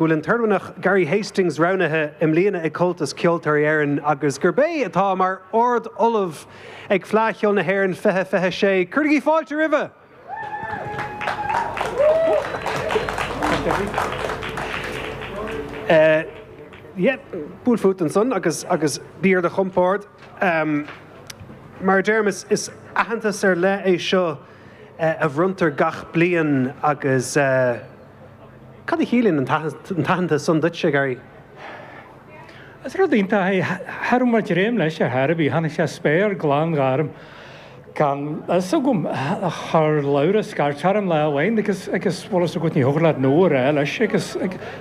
bhfuil an tOirmhinneach Gary Hastings roghnaithe i mbliana ag Comhaltas Ceoltóirí Éireann agus gurb é atá mar Ard Ollamh ag Fleadh Cheoil na hÉireann 2026. Cuirigí fáilte roimhe! Buail fút ansan agus bí ar do chompord. Mar a deirim, is aitheantas ar leith é seo a bhronntar gach bliain agus. Cad a chiallaíonn an t-aitheantas san duitse, a Gary? Is rud iontach é. Cha raibh mé ag dréim leis ar chor ar bith. Tháinig sé as spéir ghlan ghorm gan fhios agam. Chuir Labhrás scairt orm lá amháin agus agus bhfuil fhios agat, ní thiocfadh leat 'No' a rá leis agus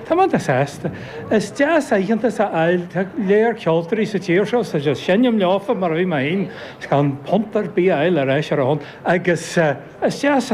tá mé an-sásta. Is deas aitheantas a fháil. Tá go leor ceoltóirí sa tír seo ag seinm leofa mar a bhí mé féin, is gan punt ar bith a fháil ar ais ar a shon agus is deas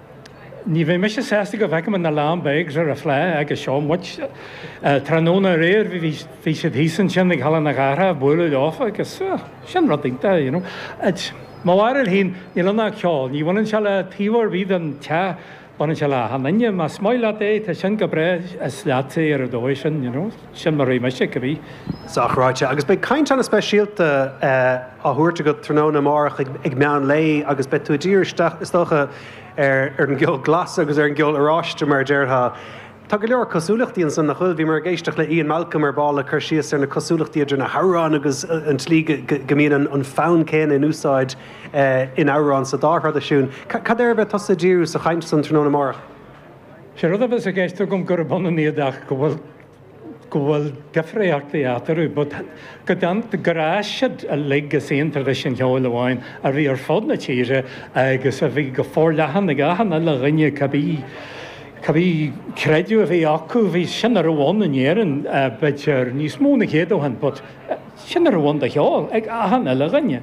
Ní bheidh mise sásta go bhfeicim na Lambegs ar an Fhleadh agus seo muid. Tráthnóna aréir bhí siad thíos ansin ag Halla na Cathrach ag bualadh leofa agus sin rud iontach, you know. Mo bharúil féin, níl ann ach ceol. Ní bhaineann sé le taobh ar bith den teach, baineann sé le achan duine. Más maith leat é, tá sin go breá, is leatsa é ar an dóigh sin, you know. Sin mar a chímse é cibé. Sách ráite. Agus beidh caint ana speisialta á thabhairt agat tráthnóna amárach ag meán lae agus beidh tú ag díriú isteach is dócha ar an gceol glas agus ar an gceol oráiste mar a déarfá. Tá go leor cosúlachtaí ansan nach bhfuil? Bhíomar ag éisteacht le Ian Malcolm ar ball ag cur síos ar na cosúlachtaí idir na hamhráin agus an tslí go mbíonn an fonn céanna in úsáid in amhrán sa dá thraidisiún. Cad air a bheidh tusa ag díriú sa chaint san tráthnóna amárach? Sé rud a bheas i gceist agam gurb ionann iad ach go bhfuil go bhfuil difríochtaí eatarthu, but go deimhin go raibh siad uilig as aon traidisiún cheoil amháin a bhí ar fud na tíre agus a bhí go forleathan ag achan uile dhuine cibé cibé creideamh a bhí acu, bhí, sin a raibh ann in Éirinn b'fhéidir níos mó ná céad ó shin but sin a raibh ann de cheol ag achan uile dhuine.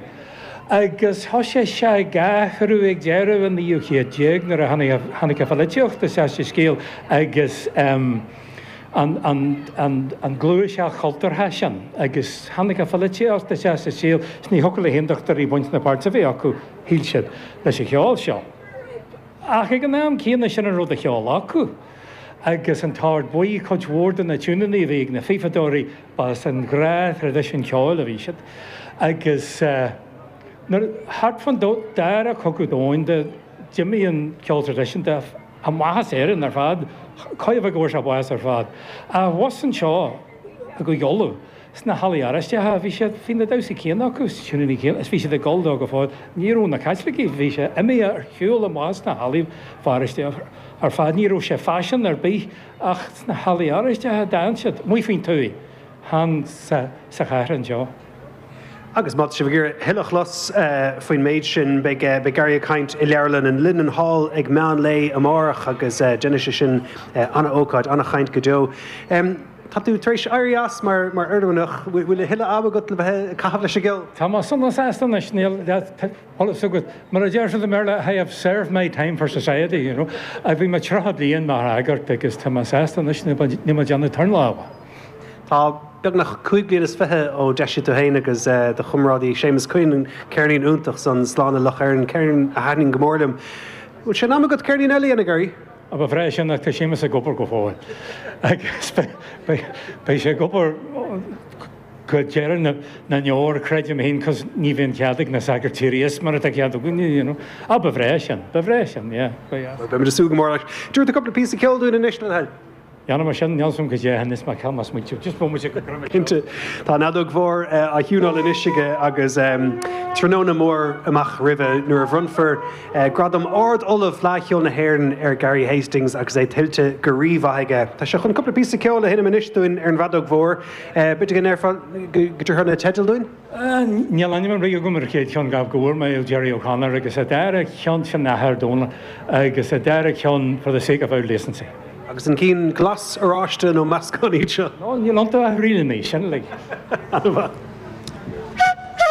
agus thosaigh sé ag athrú ag deireadh an naoú chéad déag nuair a tháinig an pholaitíocht isteach sa scéal agus an gluaiseacht chultúrtha sin agus tháinig an pholaitíocht isteach sa scéal is ní thiocfadh le hAontachtóirí baint ná páirt a bheith acu, shíl siad, leis an cheol seo. Ach ag an am céanna sin a raibh de cheol acu agus an tOrd Buí cuid mhór de na tiúineanna a bhí ag na fífeadóirí B'as an ghnáth-thraidisiún ceoil a bhí siad agus nuair, thart fán dara cogadh domhanda, d'imigh an ceol traidisiúnta amach as Éirinn ar fad. Chóir a bheith go bhfuair sé bás ar fad. Ach abhus anseo i gCúige Uladh, sna hallaí Oráisteacha, bhí siad, bhí na damhsaí céanna acu, is na tiúiníní céanna is bhí siad ag dul dó go fóill. Ní raibh na Caitlicigh, bhí sé imithe ar shiúl amach as na hallaí Feirste ar fad. Ní raibh sé faisean ar bith Ach sna hallaí Oráisteacha a d'fhan siad, amuigh faoin tuath, chan sa chathair anseo. Agus má tá sibh ag iarraidh a thuilleadh a chlos faoin méid sin, beidh Gary ag caint i Leabharlann an Linenhall ag meán lae amárach agus déanfaidh sé sin an-ócáid, an-chaint go deo. Tá tú tar éis éirí as mar Oirmhinneach, bhfuil a thuilleadh ama agat le bheith ag caitheamh leis an gceol? Tá mé sona sásta anois, níl. eolas agat, mar a deir siad i mBéarla, I have served my time for society, you know. Bhí mé tríocha bliain mar shagart agus tá mé sásta anois, níl mé ag déanamh turn leofa. Tá beagnach cúig bliain is fiche ó d'eisigh tú fhéin agus do chomrádaí Séamus Quinn an ceirnín iontach san, Slán le Loch Éirne, ceirnín a thaitníonn go mór liom. Bhfuil sé in am agat ceirnín eile a dhéanamh, Gary? Ba bhreá sin, ach tá Séamus ag obair go fóill agus beidh sé ag obair. Go deireadh na ndeor creidim féin cos ní bhíonn cead ag na sagairt éirí as mar atá cead againn you know. Ah ba bhreá sin, ba bhreá sin yeah go deas. Beimid ag súil go mór leis. Dtabharfá cúpla píosa ceoil dúinn anois le do thoil. Dhéanfaidh muid sin, níl a fhios agam caidé anois mar ceann más muid just bhfuil muid ag cur muid ceoil. Tá an fheadóg mhór á thiúnáil anois aige agus tráthnóna mór amach roimhe nuair a bhronnfar gradam Ard Ollamh Fleadh Cheoil na hÉireann ar Gary Hastings agus é tuillte go rí-mhaith aige. Tá sé chun cúpla píosa ceoil a sheinm anois dúinn ar an bhfeadóg mhór. B'fhéidir go ndéarfá go dtabharfá na teidil dúinn? Níl ainm ar bith agam ar an chéad cheann, ach go bhfuair mé ó Gerry O'Connor, agus a dara cheann, sin athair Dónal, agus an dara ceann, for the sake of old decency. Agus an cinn glas, oráiste nó meascán iad seo? Níl iontu ach ríleanna, sin uilig. Ana mhaith.